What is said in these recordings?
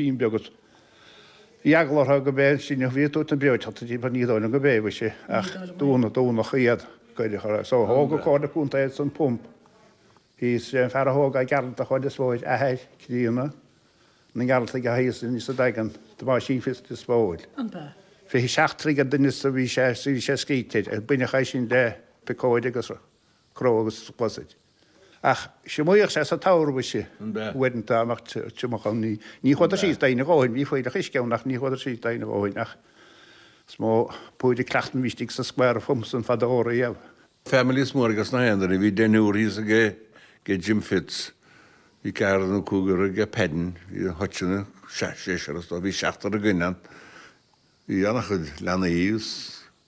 Bean bhocht a bhí eagla orthu gurb é an sruthán a bhí ag tabhairt na breoiteachta di, mar ní dóigh liom gurb é, mhuise, ach dúnadh, dúnadh iad go huile is go hiomlán. So thóg an Comhairle Contae ansan pump thíos, is é an fear a thóg é Gearaltach thall is dóigh, athair críonna na nGearaltach atá thíos in sa Daingean, Tomáisín Fitzgerald is dóigh. An b'ea? Fiche seacht troigh de dhoimhneas a bhí sé, bhí sé scríte air, ar baineadh é sin le picóid agus cró agus sluasaid. Ach shuíodh sé sa tower, mhuise, an uaireanta nach dtiocfadh an ní. Ní chuadar síos d'aon ghnó shin, bhí fuílleach uisce ann, ach ní chuadar síos d'aon ghnó shin, ach is mó púir a cleacht muid istigh sa square of Homes an fad ó riamh. Families mór ag gach aon duine, bhí deichniúr thíos ag Jim Fitz, bhí ceathrar nó cúigear ag Padden, bhí ag Hutch seisear is dócha, bhí seachtar againn ann, bhí an-chuid leanaí thíos.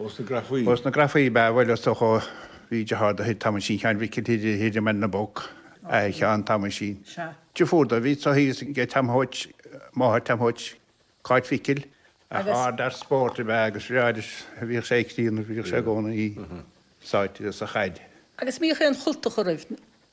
Ó sna grafaí. Ó sna grafaí, b'ea, bhuel, is dócha, bhí de shárd ó thigh Thomáisín Sheáin Mhicil thiar, thiar i mBaile na bPoc, athair Sheáin Thomáisín. Sea. deirfiúr dó, a bhí pósta thíos ag Tom Thoit, máthair Tom Thoit, Cáit Mhicil. Ach Agus. ard fhear spóirt ab ea agus ba bhreá leis, bhíodh sé ag críonadh, bhíodh sé i gcónaí sáite sa chaid. Agus bhíodh aon chultacha roimh